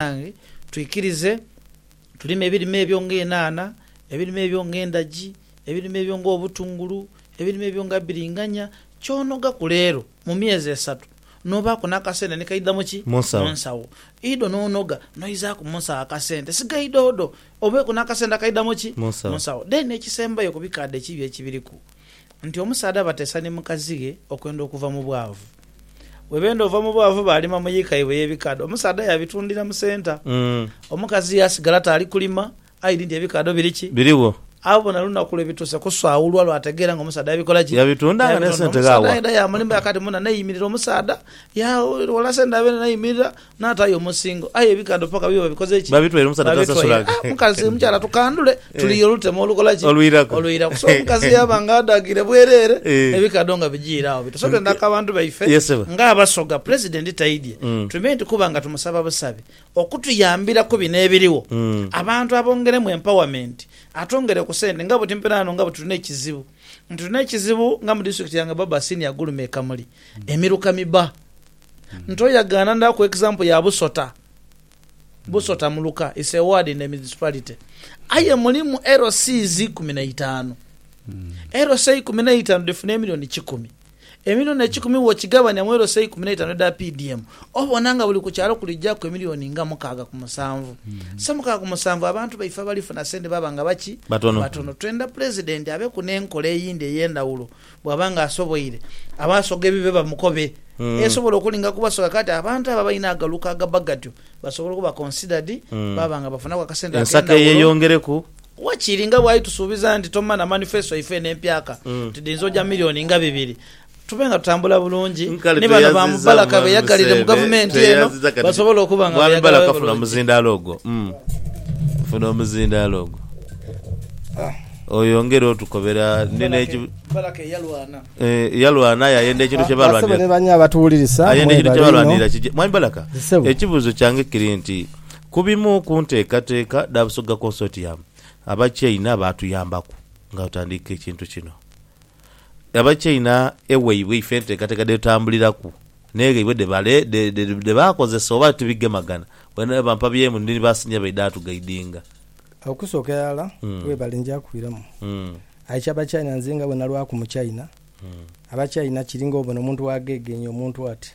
Banange twikirize tulime ebirime ebyo nga enhanha, ebirime ebyo nga endhagi, ebirime ebyo nga obutungulu, ebirime ebyo nga bbiringanya, ky'onogaku leero mu myezi esatu n'obaaku n'akasente ni kaidha mu ki? Mu nsawo. Idho n'onoga n'oizaaku mu nsawo akasente, sigaidhodho obeeku n'akasente akaidha mu ki? Mu nsawo. Then ekisembayo ku bikaadha ekibi ekibiriku, nti omusaadha abateesa ni mukazi ghe okwenda okuva mu bwavu. Bwe beenda ova mu bwavu baalima mu yiika yaibwe ey'ebikaadho. Omusaadha yaabitundira mu senta. Omukazi yaasigala taali kulima aidhi nti ebikaadho biri ki? Birigho. Agho bona lunaku lwe bituuse kusaawulwa lw'ategeera nga omusaadha yabikola ki? Yabitunda nga n'esente ghaawa. Omusaadha yaidha yaamulembera kaati muna n'aimirira omusaadha. Yaaghola sente abe n'aimirira N'ataayo omusingo, aye ebikando paka bibe babikoze ki? Babitwaire omusaadha taasasula. Babitwaire. Ah, mukazi, Eh. mukyala tukandule, Eh. tuliire olutemo olukola ki? Olwiraku. Olwiraku. So omukazi yaaba nga adhagiire bwereere, Eh. ebikando nga bijiire agho biti. So twendha ku abantu baife Yes, sebo. ng'Abasoga, Pulezidenti taidye, Mm. tuime nti kuba nga tumusaba busabi okutuyambira ku bino ebiriwo, Mm. abantu abongeremu empowerment, atwongere ku sente nga buti mpina ghano nga buti tulina ekizibu nti tulina ekizibu nga mu disitulikiti yange Barbara Senior Gulume e Kamuli, emiruka miba. nto yagaana ndha ku example ya Busota Busota muluka is a ward in a municipality aye mulimu LCs ikumi na itaanu LC ikumi na itaanu dhifuna emilioni kikumi emilioni ekikumi wokigabania mu LC ikumi na itaanu edha PDM obona nga buli ku kyalo kuli jaku emilioni nga mukaaga ku musanvu so mukaaga ku musanvu abantu baife abalifuna sente baba nga baki? Batono. Batono twendha pulezidenti abeku ne nkola eyindi eyendhawulo Bw'aba nga asoboire, abaasoga ebibe bamukobe. Esobola okulinga ku basoga kati abantu abo abalina agaluka agabba gatyo basobola okuba considered baaba nga bafunaku akasente ak'endhawulo. Ensako eyeyongereku. Wakiri nga bwali tusuubiza nti tomana manifesto yaife eno empyaka nti dhiyinza oja million nga bibiri, tube nga tutambula bulungi Nkale ni bano ba tweyaziza Mubalaka Mwami beyagalire mu Museeve, gavumenti eno tweyaziza kati ti- basobole okuba nga Mwami beyagalira Mubalaka funa bulungi. omuzindaalo ogwo, mm. Funa omuzindaalo ogwo. Oyongere otukobera. Ndi n'eki. Balaka eyalwana. Yalwana aye ayenda ekintu kye baalwanirira. Basebo ne banyo abatuwulirisa mwebale inho. Mwami Balaka, ekibuuzo kyange kiri nti, ku bimu ku nteekateeka dha Busoga Consortium, Abachina baatuyambaku nga tutandiika ekintu kino. nga batyaina ewaibwe ife enteekateeka dhe tutambuliraku n'eghaibwe dhe baakozesa oba tibigemagana, bweene bwe bampa by'emu ndi ni ba siniya baidha atugaidinga. Okusooka irala webale njakuiramu aye kya bakyaina nze nga bwe nalwaku mukyaina abakyaina kiri nga obona omuntu wa gheegheenye omuntu ati.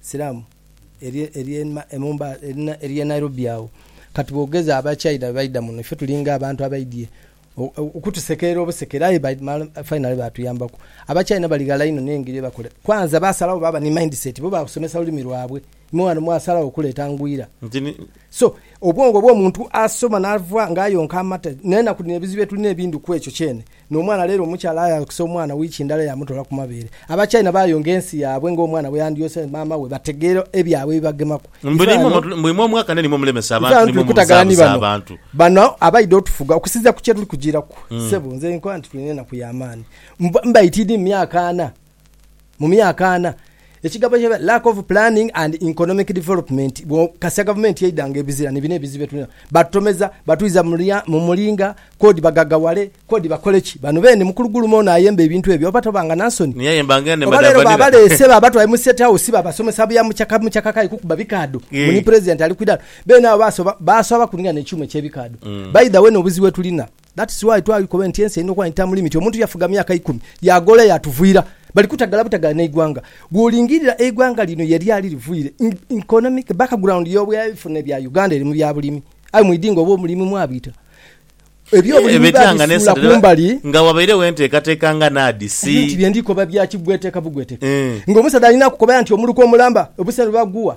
Siramu ery'e Nairobi agho. Kati bwogeza aba China bwebaidha muno ife tulinga abantu abaidhie okutusekeera obusekere aye finally batuyambaku. Aba China bali ghala inho n'engeri yebakola. Kwanza baasalawo baaba ni mindset, bo baasomesa lulimi lwabwe. Imwe ghano mwasalawo okuleeta ngwira. So, obwongo bw'omuntu asoma n'ava ng'ayonka amata. N'enaku dhino ebizibu byetulina ebindhi kwekyo kyene. N'omwana leero omukyala ayaankisa omwana wiiki ndala yaamutoola ku mabeere. Abachina baayonga ensi yaabwe ng'omwana bweyandyoose maama we bategeera ebyabwe ebibagemaku. Mbu naimwe mulimu omwaka nainimwe mulemesa abantu Ife naimwe twetaaga ni muzaabuza bano, abantu. bano abaidha otufuga okusinziira ku kyetuli kujiiraku. Ssebo, nze nkoba nti tulina enaku ya maani. Mbaite idi mu myaka ana. mu myaka ana, ekigamba kya lack of planning and economic development bwo kasia gavumenti eidha nga ebizira ni bino ebizibu bye tulina batutomeza batwiza mu mulinga kodi bagagawale kodi bakole ki bano bene mukulu gulume ono ayemba ebintu ebyo oba toba nga nansoni Ni aye mbange nde oba leero madhavanira. babaleese babatwale mu state house babasomesa bya mucaka mucaka kale kukuba bikaado Yee. mbu ni president ali ku idaala bene abo basoba baaswaba kulinga ne kyuma ekye bikaado by the way no obuzibu bwe tulina That's why twali koba nti ensi erina okuba ni term limit, omuntu yafuga myaka ikumi yagola yatuvwira. Bali kutagala butagala neigwanga. Bwolingirira eigwanga lino yelyali livwire, economic background yobwebifune bya Uganda eri mu bya bulimi. Aye mwidhi nga obwobulimi mwabwita ebyobulimi babisuula kumbali. Nga wabairegho enteekateeka nga NAADS. Ebyo nti byendikoba bya kigweteka bugweteka. Nga omusaadha alina kukobaya nti omuluka omulamba obusera bwebagugha.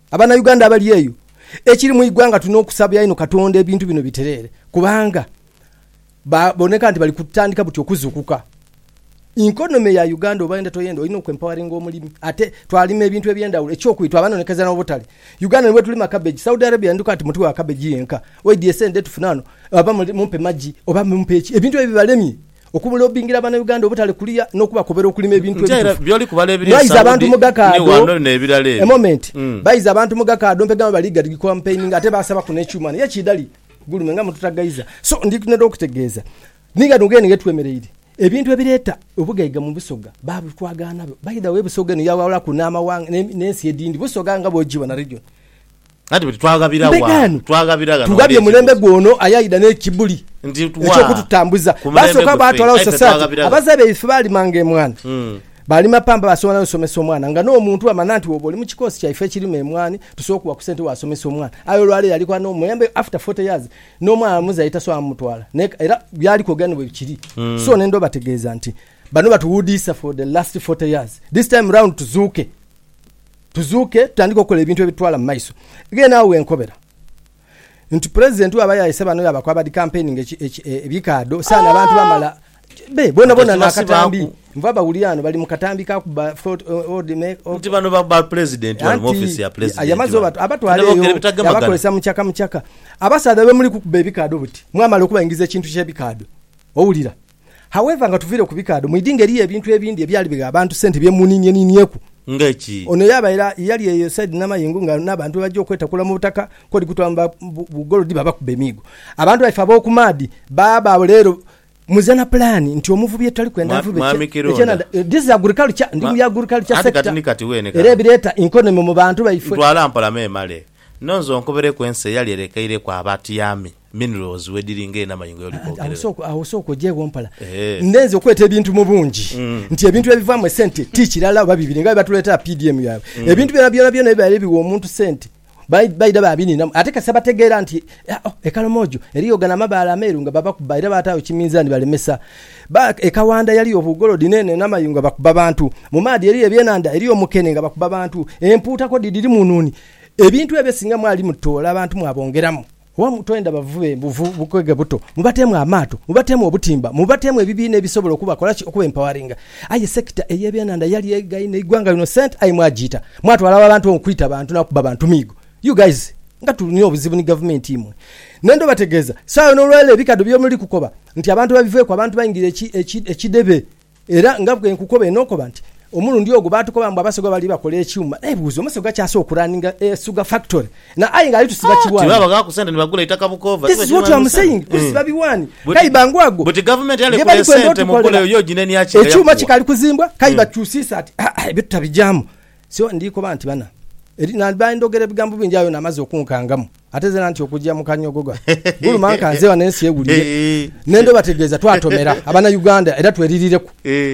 Abanauganda abali eyo, ekiri mu igwanga tulina okusabira inho Katonda ebintu bino bitereere kubanga baboneka nti bali kutandika buti okuzukuka. Inkonomy ya Uganda obayenda toyenda olina oku empoweringa omulimi ate twalima ebintu ebyendawulo ekyokuli twabanonekeza nobutale. Uganda ni bwetulima cabbage, Saudi Arabia yanduka nti mutuwe ka cabbage yenka, oidye esente dhetufuna wano oba mumpe magi oba mumpe ki ebintu ebyo byebalemye okumulobingira Banauganda obutale kuliya n'okubakobera okulima ebintu ebitufu Mwayiza abantu mu gakaado A moment Bayiza abantu mu gakaado mpegama bali gadi campaigninga ate baasabaku n'ekyuma naye kiidali gulume nga mututagaiza so ndi neda okutegeeza ni ghano ghene ghetwemereire ebintu ebireeta obugaiga mu Busoga baabitwagaanabo by the way Busoga eno yaawawulaku n'amawanga n'ensi edindi Busoga nga bwogibona region Mbe ghano tughabye mulembe gwono aye aidha n'ekibuli eky'okututambuza. Baasooka baatwalagho Sosate, abazaire baife baalimanga emwaani. Baalima pamba, baasobola n'osomesa omwana. Nga n'omuntu bw'amanya nti wooba oli mu kikoosi kyaife ekirima emwaani, tusobola okuwa ku sente waasomesa omwana. Aye olwaleero ali ghano omuyambe after forty years, n'omwana muzaire tasobola mutwala. Naye era by'ali kwogera ni bwe kiri. So nendha obategeeza nti bano batuwuudiisa for the last forty years. This time round tuzuuke. Tuzuuke tutandike okola ebintu ebitutwala mu maiso. Ghene agho ghenkobera nti Pulezidenti bwaba yaayese bano yaaba kwa badi kampeininga ebikaadho saana abantu bamala be boonaboona n'akatambi nva bawulira ghano bali mu katambi ka kubba nti bano ba Pulezidenti bali mu ofiisi ya Pulezidenti bano abatwala eyo yaabakozesa mucaka mucaka. Abasaadha bwe muli kukuba ebikaadho buti mwamala okubaingiza ekintu ky'ebikaadho owulira. However, nga tuviire ku bikaadho, mwidingo eriyo ebintu ebindi ebyali bigha abantu sente bye muniinieniinieku. Nga ki? Ono yaaba era yali eyo esaidi n'amayengo nga n'abantu bwebaja okwetakula mu butaka kw'oli kutwamba bu golodi babakuba emiigo. Abantu baife ab'oku maadhi baaba agho leero muze na pulaani nti omuvubi etutali kwenda avube ekyenhandha. This is agriculture, ndi mu bya agriculture sector era ebireeta economy mu bantu baife. Ntwala mpola memale. Nonze onkobereku ensi eyali erekeireku abatyami. minerals wediri nga enama yengoye oli kwogerera. Awo sooka ojeegho mpola. Nde nze okweta ebintu mu bungi nti ebintu ebivaamu esente ti kirala oba bibiri nga bwe batuleetera PDM yaabwe. Ebintu byona byona byona ebibaire biwa omuntu sente baidha baabiniinamu. Ate kasita bategeera nti e Karamojo eriyo gano amabaale ameeru nga babakuba era baataagho kiminzaani balemesa. E Kawanda yaliyo obugolodi n'eno enama yengo nga bakuba bantu. Mu maadhi eriyo ebyenhandha, eriyo omukene nga bakuba bantu. Empuuta ko dhidhiri mu nuuni. Ebintu ebyo singa mwali mutoola abantu mwabongeramu. Oba twenda bavube buvu bukwega buto, mubateemu amaato, mubateemu obutimba, mubateemu ebibiina ebisobola okubakola ki? Okuba empoweringa. Aye sector eyebyenanda yali eghaine eighwanga lino sente aye mwajiita. Mwatwala agho abantu okwita bantu nakubba bantu miigo. You guys nga tulina obuzibu ni gavumenti imwe. Nenda obategeeza, sawa yona olwaleero ebikadho byemuli kukoba nti abantu babiveeku abantu baingira eki eki ekidebe. Era nga bwe nkukoba enokoba nti omulundi ogwo baatukoba mbu abasoga bali bakola ekyuma. Nebuuza omusoga kyaasa okuraninga e sugar factory na aye nga ali tusiba kiwaani? Tibabagha ku sente ni bagula itaka bukoova? This is what am saying tusiba biwaani kayi bangwagwo Buti gavumenti yalekula esente muguleyo yo ginenyaaki nga yakuwa? Ekyuma kikali kuzimbwa kayi batukyusiisa ati ebyo tutabijaamu. Sio ndi koba nti bana eri nandiba ndhogera ebigambo bingi aye ono amaze okunkangamu ate zena nti okuja mu kanyogoga guluma nkanze wano ensi ewulire nendha obategeeza twatomera abana Uganda era twelirireku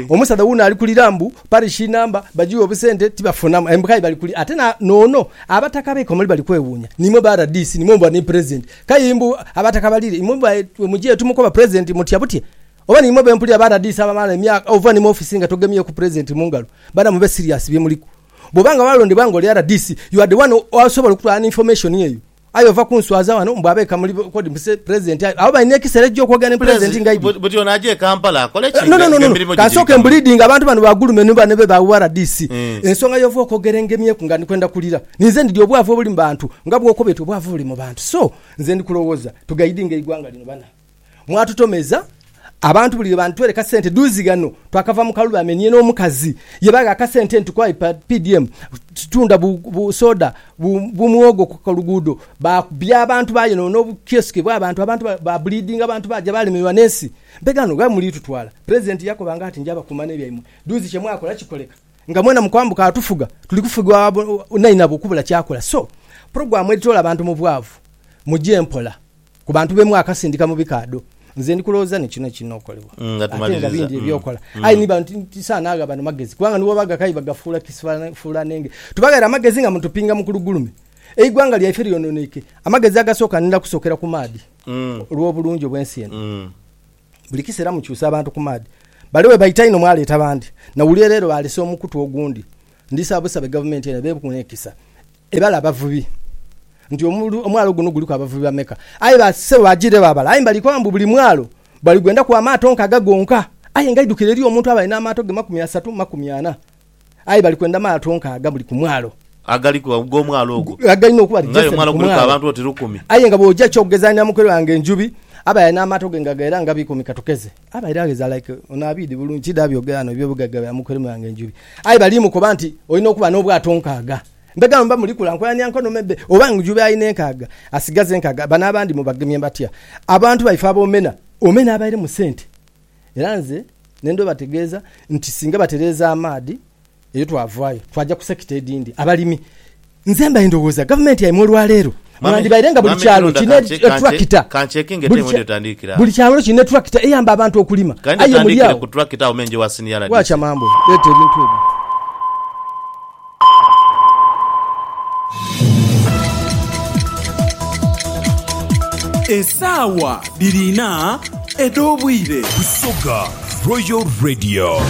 omusadha wuno ali kulira mbu parish number bajighe obusente tibafunamu embu kaye bali kulira ate nono abataka be Kamuli bali kwewunya nimwe ba rdc nimwe mbu ani president kaye mbu abataka balire imwe mbu mujighe tumukoba president mutya butya Oba nimwo bempulira ba radiisi abamala emyaka ova ni mu office nga togemyeku president mungalo bana mube serious byemuliku bwoba nga walondebwa nga oli rdc you are the one asobola okutwala ni information eyo aye ova kunswaza wano mbu abeka muli kodi mbu president aye abo balina ekisera ekija okwogera ni president nga aidye Buti ono aje e Kampala akole ki nga emirimu gigirikamu? Nononono kansooke mbulidinge abantu bano ba gulume ni bane be ba rdc ensonga yova okwogera engemyeku nga ndikwenda kulira ninze ndidya obwavu obuli mu bantu nga bwokoba eti obwavu buli mu bantu so nze ndikulowoza tugaidinge eigwanga lino bana. Mwatutomeza abantu buli lwe bantuwereka sente duuzi ghano twakava mu kalulu amenye n'omukazi ye bagha akasente nti kwa PDM tunda bu bu soda bu bu muwogo ku kaluguudo baakubya abantu bayonoona obu kioski bw'abantu abantu ba baabulidinga abantu baaja baalemererwa n'ensi mpe ghano gha muli tutwala Pulezidenti yakoba nga ati nja bakuuma n'ebyaimwe duuzi kye mwakola kikoleka nga mwena mu kwambuka atufuga tuli kufugibwa abainainabo okubula kyakola so pulogulaamu edhitoola abantu mu bwavu mugye mpola. Ku bantu be mwakasindika mu bikaadho, nze ndi kulowooza ni kino ekiina okolebwa. Ate nga bindi eby'okola. Aye ni bantu nti saana agha bano magezi, kubanga nibo bagha kayi baghafuula kisifuulaanenge. Tubaghera amagezi nga mutupinga mu kulugulume. Eighwanga lyaife lyononeike. Amagezi agasooka nidha kusookera ku maadhi, olw'obulungi obw'ensi eno. Buli kiseera mukyusa abantu ku maadhi. Bale bwe baita inho mwaleeta bandi. Nawulira leero baalese omukutu ogundi. Ndisaba busabe Gavumenti eno ebeeghu n'ekisa. Ebale abavubi nti, Omwalo guno guliku abavubi bameka? Aye ba sebo baajiire baabala. Aye mbali koba mbu buli mwalo bali gwendaku amaato nkaaga gonka. Aye nga idhukiro eriyo omuntu abali n'amaato ge makumi asatu mu makumi ana. Aye bali kwenda maato nkaaga buli ku mwalo. Agaliku ag'omwalo ogwo. Agalina okuba nga aye omwalo guliku abantu oti lukumi. Aye nga bw'oja eky'okugeza ni amukwere wange Njubi, abali n'amaato ge nga ghaera nga biikumi katukeze. Abaire agheza like ono abiidhi bulungi kidha byogera ghano ebyo bugaiga bya muku elimu yange enjubi. Aye bali mukoba nti olina okuba n'obwato nkaaga. Mbega mba muli kula nkolanira nkono mebbe oba njubi alina enkaaga asigaza enkaaga bano abandi mubagemye batya? Abantu baife abomena omena abaire mu sente era nze nendhobategeeza nti singa batereeza amaadhi Eyo twavaayo twaja ku sekita edhindi, abalimi. Nze mbaire ndowooza gavumenti yaimwe olwaleero mwandibaire nga buli kyalo kirina etulakita. Buli kyalo kirina etulakita eyamba abantu okulima. Aye muli agho. Waacha mambwa, leeta ebintu ebyo. Esaawa dhiri inha edh'obwire. Busoga Royal Radio.